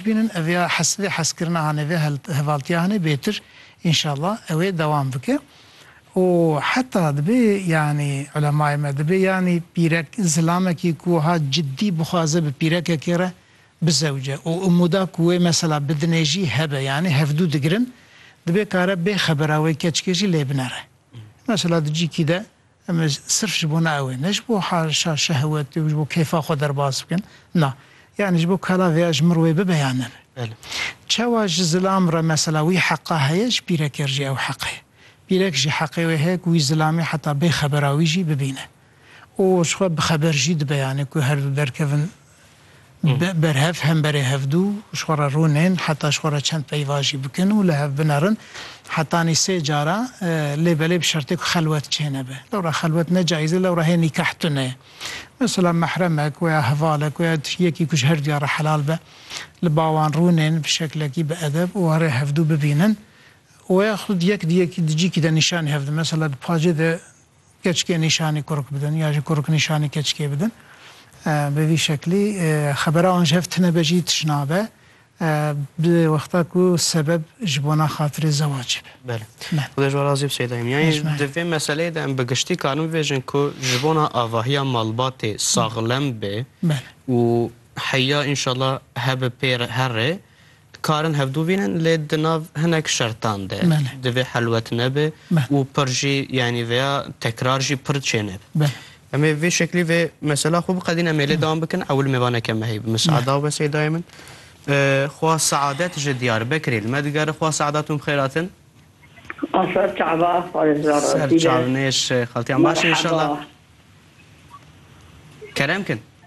Bînin ev ya hes vê heskirina hane vê hevaltiya hane bêtir înşala ewê dewam bike û heta dibê yanî ulemayê me dibê yanî pîrek zilamekî ku wiha cidî bixwaze bi pîrekekê re bizewce û umûda ku wê mesela bidinê jî hebe yanî hevdû digirin dibê kare bê xebera wê keçikê jî lê binere mesela di cîkî de Em ê sirf ji bo neawê, ne ji bo haşa şehwetê û ji bo kêfa xwe derbas bikin, na, yanî ji bo kala vê ya ji mir wê bibe yan nebe. Çawa ji zilam re mesela wî heqa heye, ji pîrekê re jî ew heq heye. Pîrek jî heqê wê heye ku wî zilamê heta bê xebera wî jî bibîne û ji xwe bixeber jî dibe yanî ku herdu derkevin berhev hemberê hevdû ji xwe re rûnên heta ji xwe re çend peyva jî bikin û li hev binerin hetanî sê cara lê belê bi şertê ku xelwet çênebe. Lewra xelwet ne caîz e, lewra hê nîkah tune ye. Mesela mehremek weya hevalek weya yekî ku ji her duya re helal be li ba wan rûnên bi şeklekî bi edeb û warê hevdû bibînin û ya xwed yek di yekî di cîkî de nîşanî hev didin. Mesela di pacê de keçikê nîşanî kurk bidin ya jî kurk nîşanî keçikê bidin bi vî şeklî xebera wan ji hev tune be jî tişt nabe bi wexta ku sebeb ji bona xatirê zewacê be. Belê. Xuda ji we razî bi Seyda Hîmî. Yanî di vê meseleyê de em bi giştî karin bibêjin ku ji bona avahiya malbatê saxlem bê û heya înşallah hebe pê re her rê Dikarin hevdu bînin lê di nav hinek şertan de divê helwet nebe û pir jî yanî veya tekrar jî pir çênebe. Em ê vê şeklî vê mesela xwe biqedîn em ê lê dewam bikin ewil mêvaneke me heye bi Misada û be Seydayê min xwa Seadet ji Diyarbekirê li me digere xwa Seadet hûn bi xêr hatin. A ser çava parêzgara Ser Dîle. çav nêş xaltiyan baş in inşallah. Kerem kin.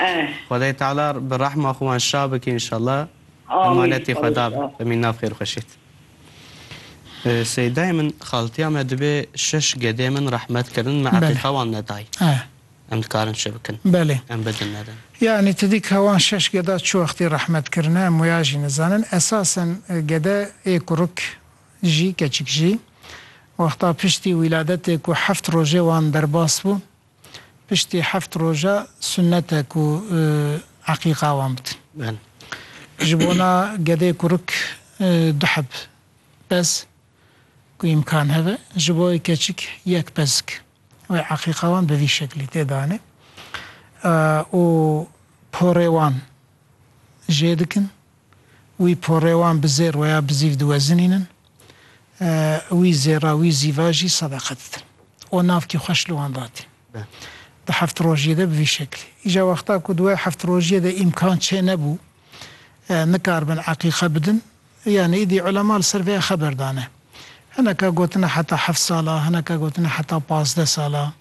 Eh. Xwedayê Teala bi rehma xwe wan şa bike înşallah. Emanetê Xweda be. Emîn Nav xêrxweşît. Seydayê min xaltiya me dibê şeş gedê min rehmet kirin me eqîqa wan nedayî. Em dikarin çi bikin? Em bidin nedin? Yanî tu dî ka wan şeş geda çi wextî rehmet kirine em wêya jî nizanin. Esasen gede ê kurik jî keçik jî wexta piştî wîladetê ku heft rojê wan derbas bû Piştî heft roja sunnet e ku eqîqa wan bikin. Ji bona gedê kurik du heb pez ku îmkan hebe, ji bo wê keçik yek pezik wê eqîqa wan bi vî şeklî tê danê û porê wan jê dikin. Wî porê wan bi zêr we ya bi zîv diwezinînin. Wî zêra wî zîva jî sedeqe didin. O navkî xweş li wan datî. Di heft rojiyê de bi vî şeklî. Îja wexta ku di we heft rojiyê de îmkan çênebû nikaribin eqîqe bidin, yanî îdî ulema li ser vê ya xeber dane. Hineke gotine heta heft sal a, hineke gotine heta pazdeh sal a.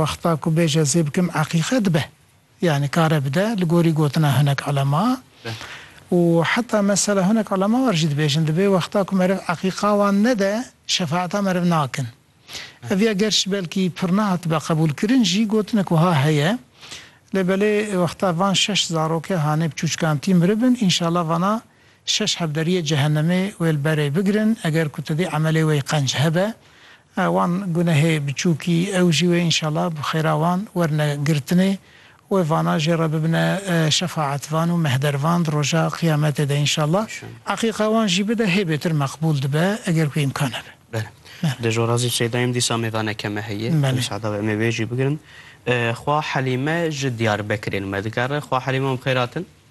Wexta ku bêj ez ê bikim eqîqe dibe. Yanî kare bide li gorî gotina hinek elema û heta mesela hinek elema wer jî dibêjin dibê wexta ku meriv eqîqa wan nede şefaeta meriv nakin. Ev ya gerşî belkî pir nehatibe qebûlkirin jî gotinek wiha heye lê belê wexta van şeş zaroke hanê bi çûçkantî miribin înşala vana Şeş hevderiyê cehenemê wê li berê bigirin, eger ku tu dê emelê wê qenc hebe, wan gunehê biçûkî ew jî wê înşela bi xêra wan werne girtinê. Wê vana jê re bibine şefaetvan û mehdervan di roja qiyametê de înşela. Eqîqa wan jî bide hê bêtir meqbûl dibe eger ku îmkan hebe. Bele. Dê ji Orazî Seyda yim dîsa mêvane keme heye. Belê. Musada be em ê wê jî bigirin. Xwa Helîme ji Diyarbekirê li me dikare. Xwa Helîme wan bi xêr hatin.